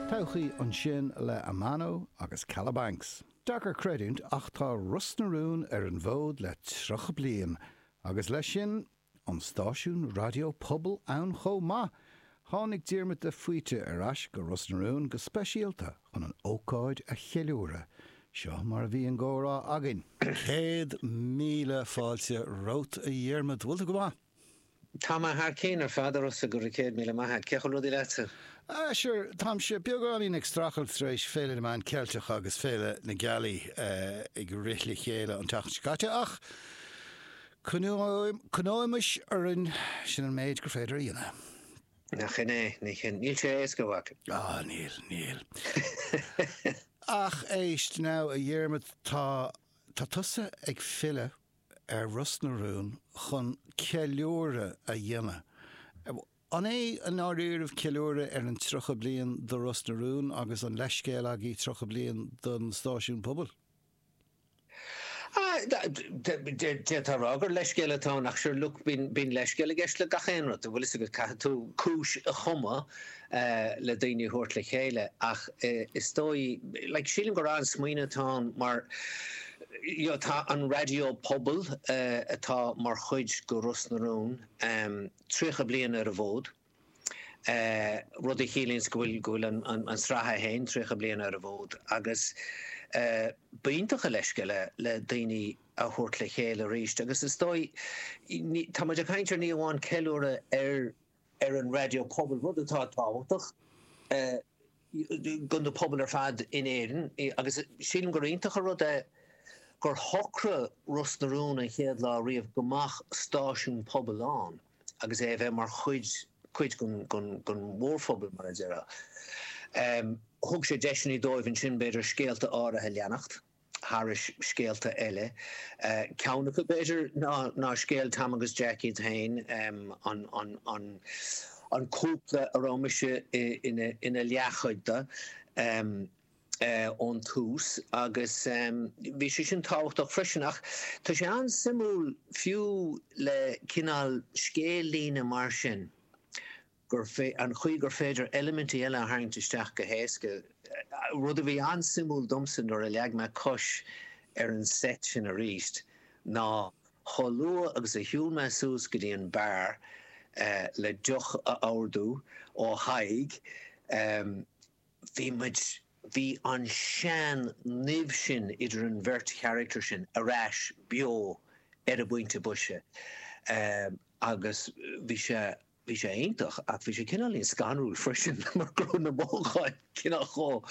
Todhchaí ansin le Amano agus Kalabanx. Deacair creidiúint ach tá Ros na Rún ar an bhfód le 30 bliain agus leis sin, an stáisiún raidió pobail ann chomh maith! Tháinig Diarmuid de Faoite ar ais go Ros na Rún go speisialta chun an ócáid a cheiliúradh. Seo mar a bhí an gcomhrá againn. Céad míle fáilte romhat a Dhiarmuid, bhfuil tú go maith? Tá mé thar cinn ar fad, agus go raibh céad míle maith a't. Cén chaoi a bhfuil rudaí leatsa? Sure, táimse beagáinín ag strachailt tar éis Féile na Meán Ceilteach agus Féile na Gealaí ag rith le chéile an tseachtain seo caite ach coinneoimis orainn, sin an méid gur féidir a dhéanamh. Nach shin é? Nach shin é. Níl sé éasca, a mhac. Á, níl, níl. Ach éist, now, a Dhiarmaid, tá, tá tusa ag filleadh. ar Ros na Rún chun ceiliúradh a dhéanamh. An é i ndáiríribh ceiliúradh ar an 30 bliain do Ros na Rún agus an leithscéal agaí 30 bliain don stáisiún pobail? D'fhéadfá a rá gur leithscéal atá ann ach sure look bíonn leithscéal i gceist le gach aon rud, an bhfuil fhios agat. Caithfidh tú cúis a chumadh le daoine a thabhairt le chéile ach is dóigh, like sílim gur an-smaoineamh atá ann mar you know tá an raidió pobail atá mar chuid de Ros na Rún 30 bliain ar an bhfód, rud a chiallaíonns go bhfuil go bhfuil an an sraith é féin 30 bliain ar an bhfód agus ba iontach an leithscéal é le daoine a thabhairt le chéile arís agus is dóigh ní tá muid ag caint ar ní amháin ceiliúradh ar ar an raidió pobail, rud atá tábhachtach do na pobail ar fad in Éirinn agus sílim gur iontach an rud é gur shocraigh Ros na Rún an chéad lá riamh go mbeadh stáisiún pobail ann agus é a bheith mar chuid chuid den mhórphobal, mar a déarfá. Thug sé deiseanna dóibh ansin b'fhéidir scéalta áirithe a leanacht. thairis scéalta eile. Ceann acu, b'fhéidir, ná scéal Tom agus Jack iad féin, an cúpla a raibh mise ina leathchuid de ón tús, agus bhí sé sin tábhachtach freisin. Ach tá sé an-suimiúil fiú le cineál scéal-líne mar sin, gur féidir, an chaoi gur féidir eilimintí eile a tharraingt isteach go héasca, rud a bhí an-suimiúil domsa nuair a leag mé cos ar an seit sin arís, ná chomh luath agus a shiúil mé suas go dtí an beár le deoch a ordú ó Thadhg, bhí muid, bhí an sean-nimh sin idir an bheirt charactar sin ar ais beo ar an bpointe boise agus bhí sé Bhí sé iontach ach bhí sé cineáilín scanrúil freisin mar go raibh na mothúcháin cineál chomh,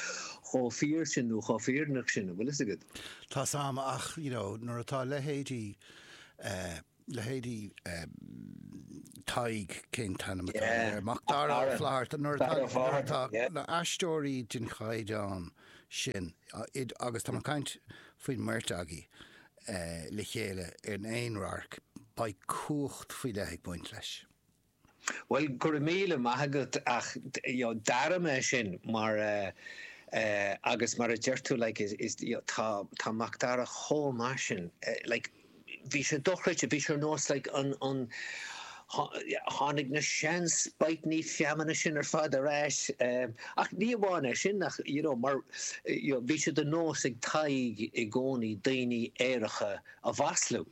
chomh fíor sin nó chomh fírinneach sin, an bhfuil fhios agat. Tá 's a'm ach you know nuair atá leithéidí eh, leithéidí eh Tadhg, cén t-ainm atá Yeah, air, Mac Dara Ó Fátharta, yeah. Nuair atá na aisteoirí den chaighdeán sin, agus tá mé ag caint faoin mbeirt agaí, le chéile in aon radharc, beidh cumhacht faoi leith ag baint leis. Bhuel, go raibh míle maith agat ach you know d'airigh mé sin mar eh agus mar a deir tú like is is you know tá Mac Dara chomh maith sin like bhí sé dochreidte bhí sé ar nós like an an Tháinig na sean spite-annaí feamainne sin ar fad ar ais ach ní amháin é sin ach you know mar you know bhí sé de nós ag Tadhg i gcónaí daoine aeracha a mhaslú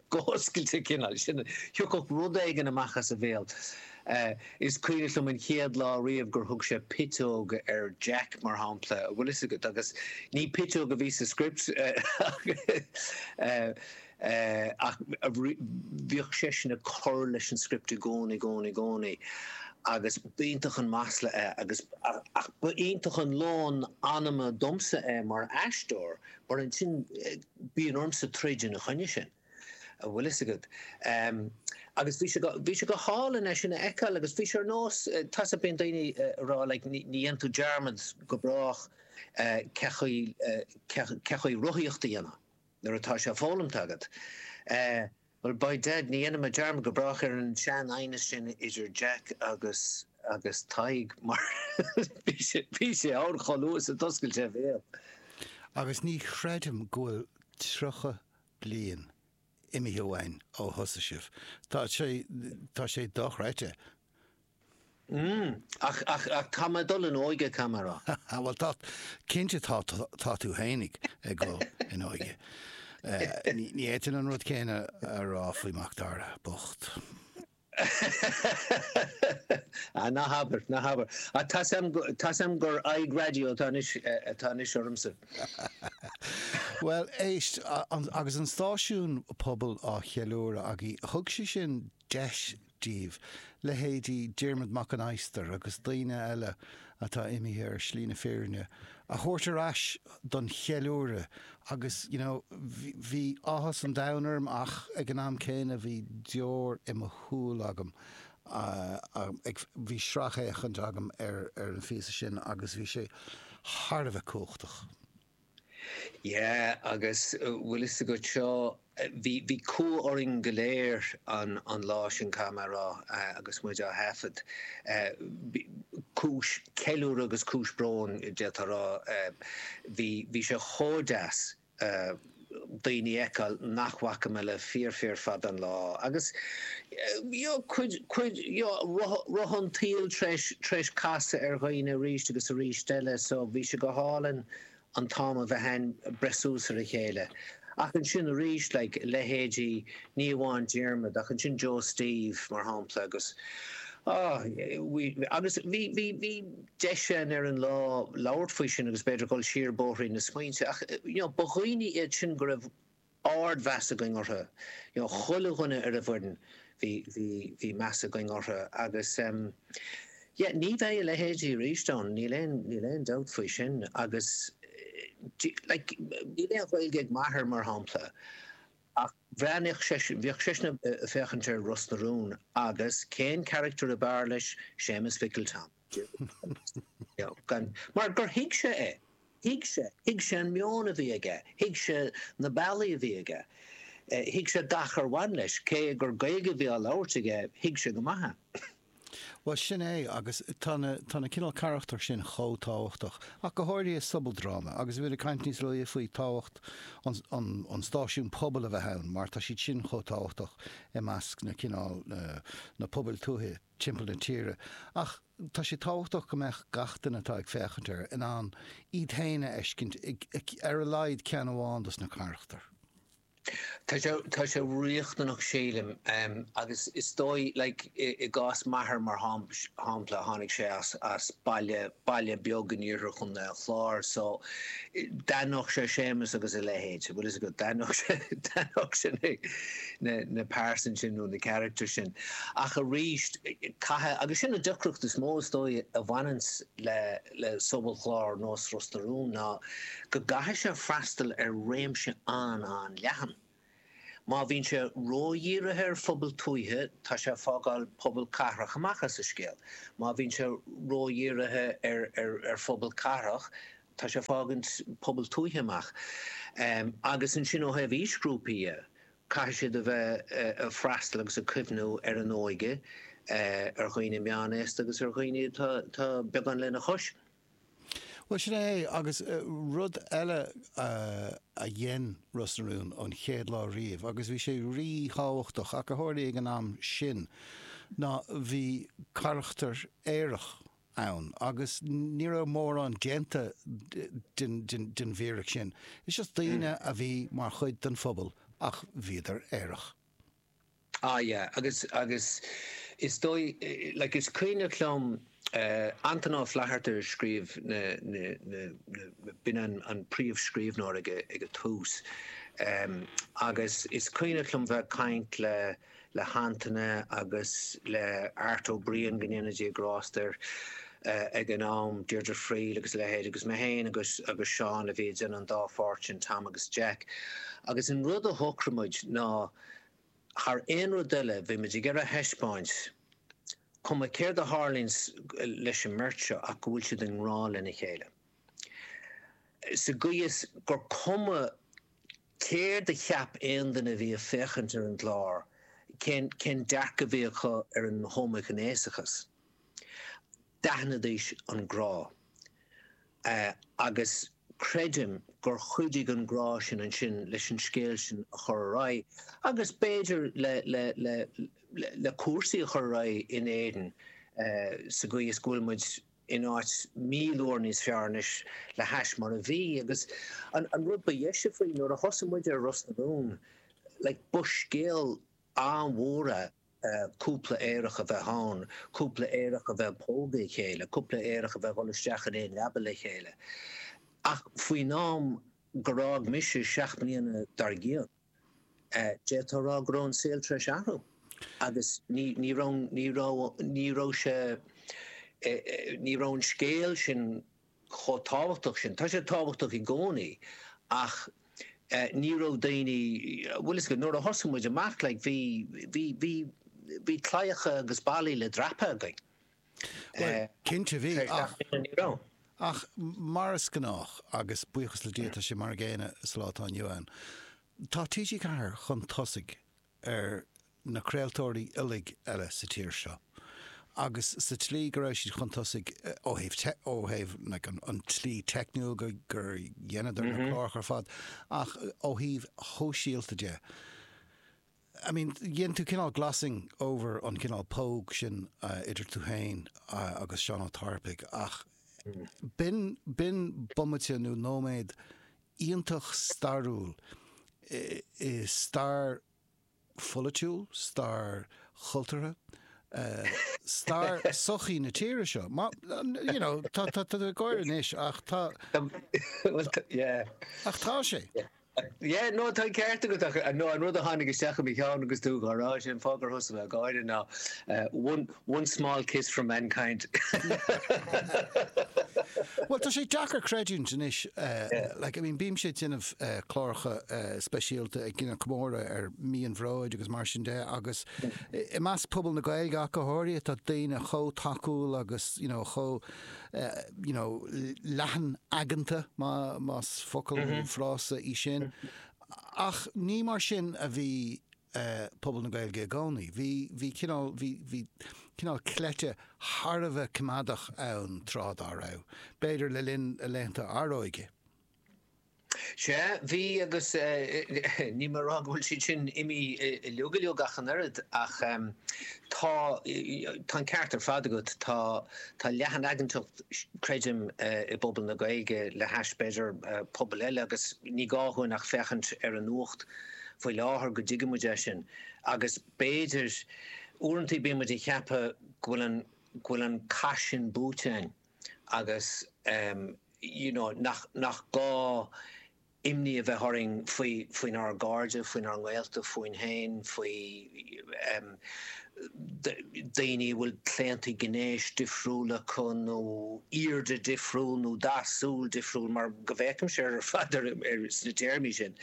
go hoscailte cineál sin thiocfadh rud éigin amach as a bhéal is cuimhneach liom an chéad lá riamh gur thug sé piteog ar Jack mar shampla bhfuil fhios agat agus ní piteog a bhí sa script ach Ach bhíodh seisean ag cur leis an script i gcónaí, i gcónaí, i gcónaí agus ba iontach an masla é agus, ach ba iontach an lón anama domsa é mar aisteoir mar ansin bíonn ormsa troid ina choinne sin, an bhfuil fhios agat. Agus bhí sé go, bhí sé go hálainn é sin a fheiceáil agus bhí sé ar nós, tá sa, bíonn daoine ag rá like ní dhéanann tú dearmad go brách cé chaoi, cé chaoi rothaíocht a dhéanamh. Nuair atá sé foghlamta agat. Eh, bhuel, by dad, ní dhéanaimid dearmad go brách ar an sean aighneas sin idir Jack agus, agus Tadhg mar bhí sé, bhí sé ann chomh luath is a d'oscail sé a bhéal. Agus ní chreidim go bhfuil tríocha bliain imithe uainn ó thosaigh sibh. Tá sé, tá sé dochreidte. Ach, ach, ach tá mé ag dul in óige, caithfidh mé a rá. Á, bhuel, tá, cinnte tá, tá tú féin ag dul in óige. Ní fhéadfainn an rud céanna a rá faoi Mhacdara bocht. Á, ná habair, ná habair. Á, tá's a'm, tá's a'm gur aghaidh raidió atá anois, atá anois ormsa. Bhuel, éist, agus an stáisiún pobail á cheiliúradh againn, thug sé sin deis daoibh, leithéidí Diarmuid Mac an Adhastair agus daoine eile atá imithe ar shlí na fírinne, a thabhairt ar ais don cheiliúradh agus you know bhí áthas an domhain orm ach ag an am céanna bhí deoir i mo shúil agam ag, bhí sracfhéachaint agam ar an phíosa sin agus bhí sé thar a bheith cumhachtach. Yeah agus bhfuil fhios agat seo bhí bhí cumha orainn go léir an an lá sin caithfidh mé rá agus muid á thaifead. Cúis ceiliúrtha agus cúis bróin d'fhéadfá a rá. Bhí bhí sé chomh deas. daoine a fheiceáil nach bhfaca mé le fíor fíor fada an lá agus you know cuid you know roth an tsaoil tréis tréis casadh ar dhaoine arís agus arís eile so bhí sé go hálainn an t-am a bheith a'inn breith suas ar a chéile ach ansin arís like leithéidí ní amháin Diarmaid ach ansin Joe Steve mar shampla agus ah agus bhí bhí bhí deis ansin ar an lá labhairt faoi sin agus b'fhéidir dul siar bóithrín na smaointe ach you know ba dhaoine iad sin go raibh ard mheas againn orthu you know chuile dhuine ar an bhfoireann bhí bhí bhí meas againn orthu agus ehm yeah ní bheidh a leithéidí arís ann níl aon níl aon dabht faoi sin agus eh like níl aon Ghaeilge ag m'athair mar shampla Ach bhreathnaíodh, bhíodh seisean ag féachaint ar Ros na Rún agus cén character ab fhearr leis, Séamus Mhicil Tom. Mar gur thuig sé é. Thuig sé. Thuig sé an meon a bhí aige. Thuig sé na bealaí a bhí aige. Thuig sé gach ar bhain leis. Cé gur Gaeilge a bhí á labhairt aige, thuig sé go maith é. Bhuel, sin é, agus tá na, tá na cineál carachtair sin chomh tábhachtach, ach go háirithe i sobaldráma, agus bhí mé ag caint níos luaithe faoi tábhacht an, an, an stáisiún pobail a bheith ann, mar tá siad sin chomh tábhachtach i measc na cineál, na, na pobail tuaithe timpeall na tíre, ach tá sé tábhachtach go mbeadh gach duine atá ag féachaint air in ann iad féin a fheiscint i, i, ar a laghad ceann amháin dos na carachtair. Tá sé, tá sé riachtanach sílim agus is dóigh like i gcás m'athair mar shampla tháinig sé as baile, baile beag in iarthar chontae an Chláir so d'aithneodh sé Séamus agus a leithéid, bhfuil fhios agat, d'aithneodh sé, d'aithneodh sé na pearsain sin nó na characters sin ach arís caithfidh, agus sin an deacracht is mó is dóigh a bhaineanns le. le sobalchlár nós Ros na Rún ná go gcaithfidh sé freastal ar réimse an-an-leathan. Má bhíonn sé ródhírithe ar phobail tuaithe, tá sé ag fágáil pobail cathrach amach as an scéal. Má bhíonn sé ródhírithe ar phobail chathrach, tá sé ag fágaint pobail tuaithe amach. Agus ansin ó thaobh aoisghrúpaí dhe, Caithfidh siad a bheith ag freastal agus ag cuimhniú ar an óige, ar dhaoine meánaosta agus ar dhaoine atá beagán lena chois. Bhuel, sin é é. Agus rud eile a dhein Ros na Rún ón chéad lá riamh, agus bhí sé rí-thábhachtach, nuair a tharlaigh ag an am sin ná bhí carachtar aerach ann agus ní raibh mórán déanta den fhíric sin. Is just daoine a bhí mar chuid den phobal ach bhíodar aerach. Ah yeah agus agus is dóigh like is cuimhneach liom Antoine Ó Flatharta a scríobh na na na na b'in an an príomhscríbhneoir ag ag an tús ehm agus is cuimhneach liom bheith ag caint le le hAntoine agus le Art Ó Briain, go ndéana Dia grásta air, ag an am, Deirdre Friel agus a leithéid agus mé féin agus agus Seán a bhí ag déanamh an dá pháirt sin, Tom agus Jack. Agus an rud a shocraigh muid ná thar aon rud eile bhí muid ag iarraidh a thaispeáint, cuma céard a tharlaíonn leis an mbeirt seo ach go bhfuil siad i ngrá lena chéile. Sa gcaoi is gur cuma Céard a cheap aon duine a bhí ag féachaint ar an gclár? Cén dearcadh a bhí acu ar an homaighnéasachas? D'aithneoidís an grá. Agus creidim gur chuidigh an grá sin ansin leis an scéal sin a chur ar aghaidh agus b'fhéidir le cúrsaí a chur ar aghaidh in Éirinn sa gcaoi is go bhfuil muid in áit i bhfad Éireann níos fearr anois le hais mar a bhí agus an an rud ba dheise faoi nuair a thosaigh muid ar Ros na Rún like ba scéal an-mhór é cúpla aerach a bheith ann cúpla aerach a bheith ag pógadh a chéile cúpla aerach a bheith ag dhul isteach in aon leaba le chéile ach faoin am gur fhág mise seacht mbliana dár gcionn D'fhéadfá a rá go raibh an saol tar éis athrú agus ní raibh sé, ní raibh an scéal sin chomh tábhachtach sin. Tá sé tábhachtach i gcónaí ach ní raibh daoine, bhuel is, nuair a thosaigh muid amach like bhí, bhí, bhí, bhí claíocha agus ballaí le dreapadh againn. Bhuel, cinnte bhí, ach. Ach mar is gnách, agus buíochas le Dia tá sé mar an gcéanna sa lá atá inniu ann, tá TG4 chun tosaigh ar na craoltóirí uilig eile sa tír seo. Agus sa tslí go raibh siad chun tosaigh ó thaobh tech, ó thaobh an tslí teicniúil gur dheineadar na cláracha ar fad, ach ó thaobh sóisialta de, I mean, dhein tú cineál glossing over an cineál póg sin idir tú féin agus Seán Ó Tarpaigh ach b'in, b'in bomaite nó nóiméad iontach stairiúil i stair pholaitiúil, stair chultúrtha, stair sochaí na tíre seo. you know, tá, tá, tá tú ag gáire anois ach tá, tá, yeah, ach tá sé. Yeah, no, tá an ceart agat ach no, an rud a tháinig isteach i mo cheann agus tú dhá rá sin, fógra Tesco, ná one, one small kiss for mankind. Bhuel, tá sé deacair creidiúint anois, like, I mean, bímse ag déanamh cláracha speisialta ag déanamh comóradh ar Mí an Bhróid agus mar sin de agus i measc pobal na Gaeilge ach go háirithe, tá daoine chomh tacúil agus, you know, chomh you know, leathanaigeanta, más focal nó frása í sin, ach ní mar sin a bhí pobal na Gaeilge i gcónaí. Bhí, bhí cineál, bhí, bhí cineál cleite thar a bheith coimeádach ann tráth dá raibh, b'fhéidir le linn a laethanta Áróige. Sea, bhí agus níl mé a rá go bhfuil siad sin imithe uilig uilig ach an oiread ach tá an ceart ar fad agat, tá leathanaigeantacht creidim i bpobal na Gaeilge le hais b'fhéidir pobail eile agus ní gá dhúinn ach féachaint ar an nuacht faoi láthair go dtuigfidh muid é sin agus b'fhéidir uaireantaí bíonn muid ag ceapadh go bhfuil an cath sin buaite againn. agus you know nach nach gá imní a bheith orainn faoi faoinár gcairde, faoinár ngaolta, fúinn féin, faoi daoine a bhfuil claontaí gnéis difriúla acu nó airde difriúil nó dath súl difriúil mar go bhféacaimse ar fad ar ar sna téarmaí sin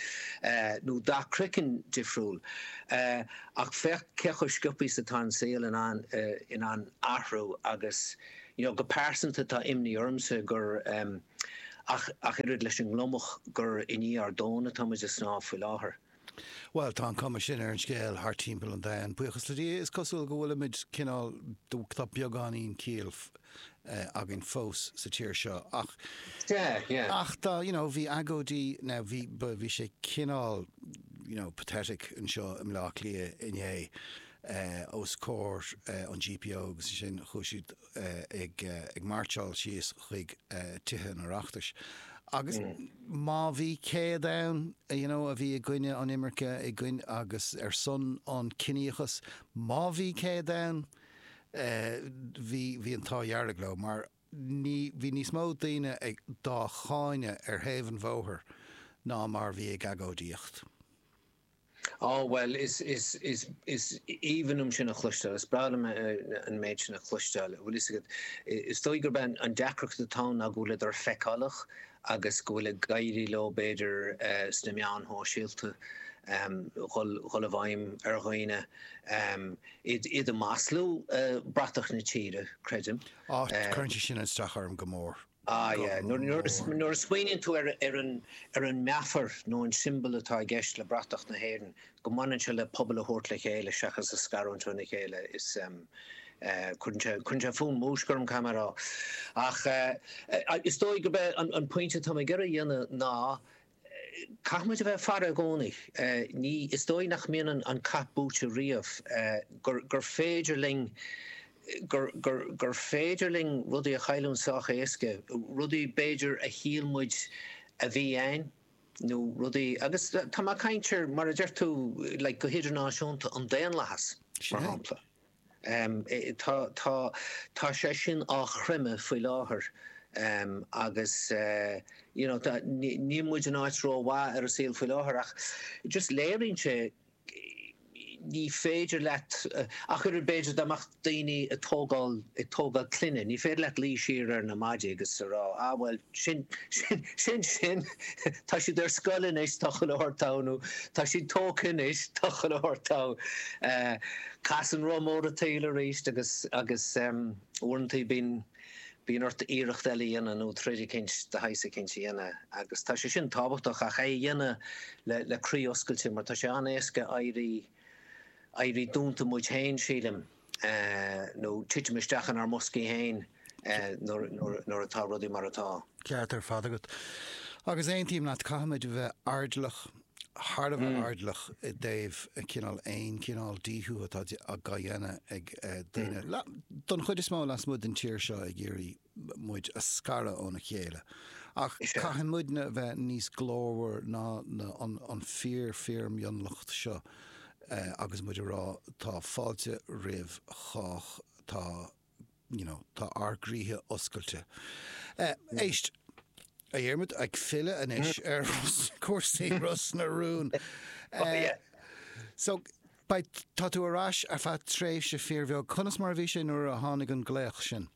nó dath craiceann difriúil ach féach cé chomh sciobtha is atá an saol in ann in ann athrú agus you know go pearsanta tá imní ormsa gur em ach ach oiread leis an ngliomach gur i ndiaidh ár dtóin atá muid ag snámh faoi láthair. Bhuel, tá an chuma sin ar an scéal thart timpeall an domhain, buíochas le Dia, is cosúil go bhfuilimid cineál, tá beagáinín ciall againn fós sa tír seo ach yeah yeah ach tá you know bhí agóidí now bhí bhí sé cineál you know pathetic anseo i mBleá Cliath inné. os comhair an GPO agus ansin chuaigh siad ag mairtseáil síos chuig Tithe an Oireachtais agus má bhí 100 ann you know a bhí i gcoinne an imirce i gcoinne agus ar son an ciníochas má bhí 100 ann bhí bhí an t-ádh dearg leo mar ní bhí níos mó daoine dhá gcáineadh ar thaobh an bhóthair ná mar bhí ag agóidíocht. Á, bhuel, is, is, is, is aoibhinn liom sin a chloisteáil, is breá liom an méid sin a chloisteáil. Bhuel, tá a fhios agat, is dóigh gurb é an deacracht atá ann ná go bhfuileadar feiceálach agus go bhfuil ag éirí leo, b'fhéidir, sna meáin shóisialta, dhul, dhul i bhfeidhm ar dhaoine, iad, iad a mhaslú, bratach na tíre, creidim. Á, cuireann sé sin as domsa go mór. Ah yeah, nuair a smaoiníonn tú ar, ar an meafar nó an siombal atá i gceist le bratach na hÉireann, go mbaineann sé le pobal a thabhairt le chéile seachas a scarúint óna chéile, is cuireann sé fonn múisc orm, caithfidh mé a rá. Ach is dóigh gurb é an pointe atá mé ag iarraidh a dhéanamh ná Caithfimid a bheith ag faire i gcónaí. Ní, is dóigh nach mbíonn an cath buaite riamh, gur, gur féidir linn, gur, gur, gur féidir linn rudaí a chailliúint sách éasca, rudaí b'fhéidir a shíl muid a bhí a'ainn nó rudaí agus tá mé ag caint ar, mar a deir tú, like, go hidirnáisiúnta, an daonlathas, mar shampla. Tá, tá, tá sé sin á chreimeadh faoi láthair agus you know níl muid in áit ró mhaith ar an saol faoi láthair ach just léiríonn sé ní féidir leat ach oiread b'fhéidir dá mbeadh daoine ag tógáil, ag tógáil clainne, ní féidir leat luí siar ar na maidí agus a rá ah bhuel sin, sin, sin sin, tá siad ar scoil anois, tá chuile shórt togha nó tá siad tógtha anois, tá chuile shórt togha. Casann roth mór an tsaoil arís agus agus uaireanta bíonn bíonn ort iarracht eile a dhéanamh nó troid eicínt de shaghas eicínt a dhéanamh agus tá sé sin tábhachtach ach é a dhéanamh le le croí oscailte mar tá sé an-éasca éirí éirí dúnta muid féin sílim nó titim isteach inár mboscaí féin. nuair atá rudaí mar atá. Ceart ar fad agat agus aontaím leat, caithfimid a bheith airdeallach, thar a bheith airdeallach i dtaobh cineál aon chineál díthiú atá á dhéanamh ag daoine, don chuid is mó lasmuigh den tír seo, ag iarraidh muid a scaradh óna chéile. Ach caithfidh muidne a bheith níos glórmhar ná an fíor fíormhionlach seo agus muid a rá tá fáilte roimh chách, tá, you know, tá ár gcroíthe oscailte. Éist, a Dhiarmaid, ag filleadh anois ar chúrsaí Ros na Rún. So, beidh, tá tú ar ais ar feadh tréimhse fíorbheag. Conas mar a bhí sé nuair a tháinig an glaoch sin?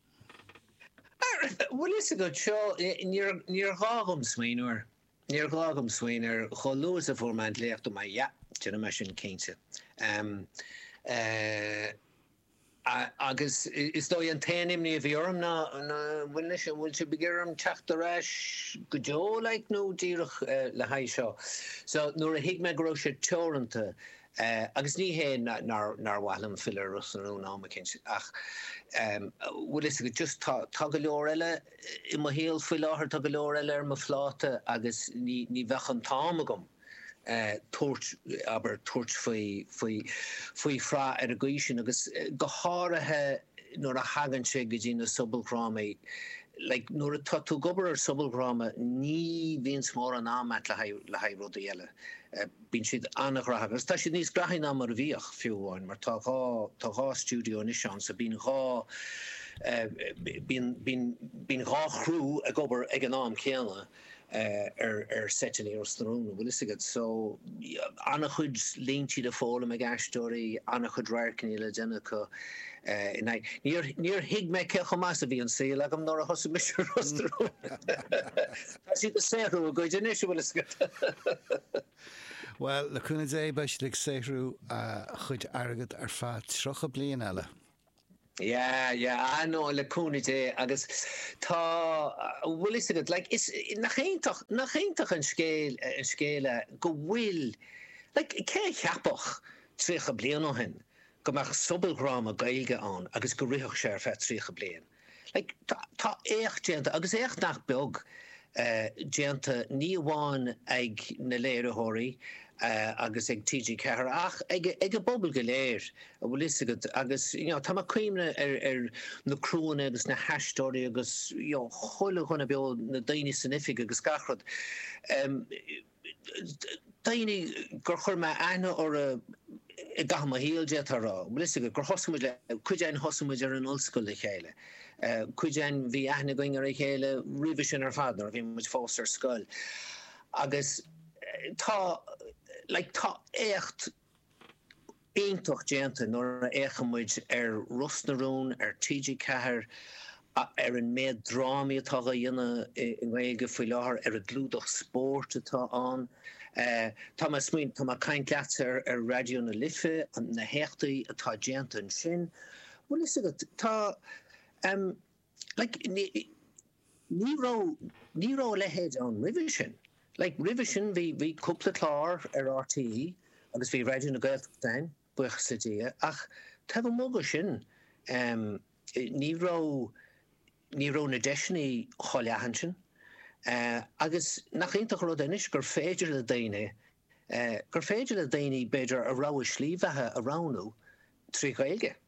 Bhuel, 'bhfuil a fhios agat seo, níor ghá dhom smaoineamh air. Níor ghá dhom smaoineamh air chomh luath is a fuair mé an glaoch, dúirt mé, yeah, déanfaidh mé sin cinnte. Agus is dóigh an t-aon imní a bhí orm ná an bhfuil sibh, an bhfuil sibh ag iarraidh orm teacht ar ais go deo like nó díreach le haghaidh seo? So nuair a thuig mé go raibh sé teoranta, agus ní hé nár mhaith liom filleadh ar Ros na Rún am eicínt ach bhfuil fhios agat just tá, tá go leor eile i mo shaol faoi láthair, tá go leor eile ar mo phláta agus ní bheadh an t-am agam. tabhairt, abair, tabhairt faoi, faoi, faoi shraith ar an gcaoi sin agus go háirithe nuair a thagann sé go dtí na sobaldhrámaí, like, nuair atá tú ag obair ar sobaldhráma ní bhíonns mórán am agat le haghaidh, le haghaidh rudaí eile. Bíonn siad an-ghnóthach agus tá siad níos gnóthaí ná mar a bhíodh, fiú amháin, mar tá dhá, tá dhá stiúideo anois ann so bíonn dhá eh, bíonn, bíonn, bíonn dhá chriú ag obair ag an am céanna. ar seit i Ros na Rún, bhfuil fhios agat. So, an-chuid líntí le foghlaim ag aisteoirí, an-chuid radharcanna le déanamh acu in aghaidh. Níor, níor thuig mé cé chomh maith is a bhí an saol agam nuair a thosaigh mise ann. Tá siad ag saothrú a gcuid anois, a bhfuil fhios agat. Bhuel, le cúnamh Dé, beidh siad ag saothrú a gcuid airgead ar feadh tríocha bliain eile. Yeah, yeah, ah no, le cúnamh Dé agus tá, bhfuil 'fhios agat, like, is, nach iontach, nach iontach an scéal, an scéal é go bhfuil, like, cé a cheapfadh tríocha bliain ó shin go mbeadh sobaldhráma Gaeilge ann agus go rithfeadh sé ar feadh tríocha bliain? Tá éacht déanta, agus éacht nach beag déanta, ní amháin ag na léiritheoirí agus ag TG4 ach ag an bpobal go léir, an bhfuil fhios agat, agus tá mé ag cuimhneamh ar na criúanna agus na haisteoirí agus chuile dhuine beo, na daoine san oifig agus gach rud. daoine gur chuir mé aithne orthu i gcaitheamh mo shaoil, d'fhéadfá a rá. Bhfuil 'fhios agat, gur thosaigh muid le, cuid againn thosaigh muid ar an ollscoil le chéile, cuid againn bhí aithne againn ar a chéile roimhe sin ar fad nuair a bhí muid fós ar scoil agus tá, like, tá éacht, iontach déanta nuair a fhéachann muid ar Ros na Rún ar TG4, ar an méad drámaí atá dhá ndéanamh i nGaeilge faoi láthair, ar an gclúdach spóirt atá ann. Tá mé ag smaoin, tá mé ag caint leatsa ar Raidió na Life, na héachtaí atá déanta ansin. Bhfuil fhios agat, tá. like, ní, ní raibh, ní raibh a leithéid ann roimhe sin. Like, roimhe sin bhí, bhí cúpla clár ar RTÉ agus bhí Raidió na Gaeltachta ann, buíochas le Dia, ach taobh amuigh de sin, em, ní raibh, ní raibh na deiseanna chomh leathan sin. Eh, agus nach iontach an rud é anois gur féidir le daoine, eh, gur féidir le daoine, b'fhéidir, a rogha slí bheatha a roghnú trí Ghaeilge.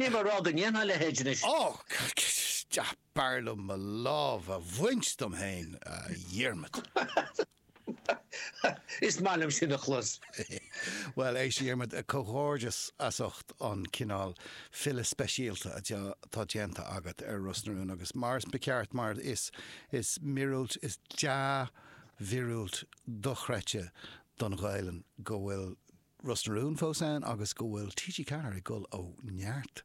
Níl mé ag rá go ndéanfainn a leithéid anois. Och! B'fhearr liom mo lámh a bhaint dom féin, a Dhiarmaid. Is maith liom sin a chlos. Bhuel, éist, a Dhiarmaid, comhghairdeas as ucht an cineál filleadh speisialta atá déanta agat ar Ros na Rún agus, mar is ceart, mar is, is míorúilt, is dea-mhíorúilt dochreidte don Ghaelainn go bhfuil Ros na Rún fós ann agus go bhfuil TG4 ag dul ó neart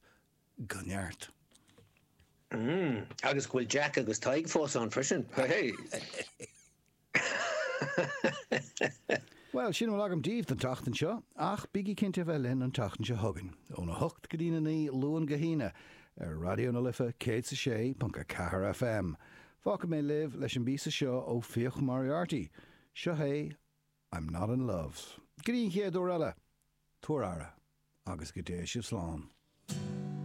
go neart. Agus go bhfuil Jack agus Tadhg fós ann freisin. Bhuel, sin a bhfuil agam daoibh don tseachtain seo, ach bígí cinnte a bheith linn an tseachtain seo chugainn, ón 8 go dtí'n 9, Luan go hAoine, ar Raidió na Life 106.4 FM. Fágfaidh mé sibh leis an bpíosa seo ó Fiach Moriarty. Seo é. I'm not in love. Go dtí an chéad uair eile, tabhair aire agus go dté sibh slán.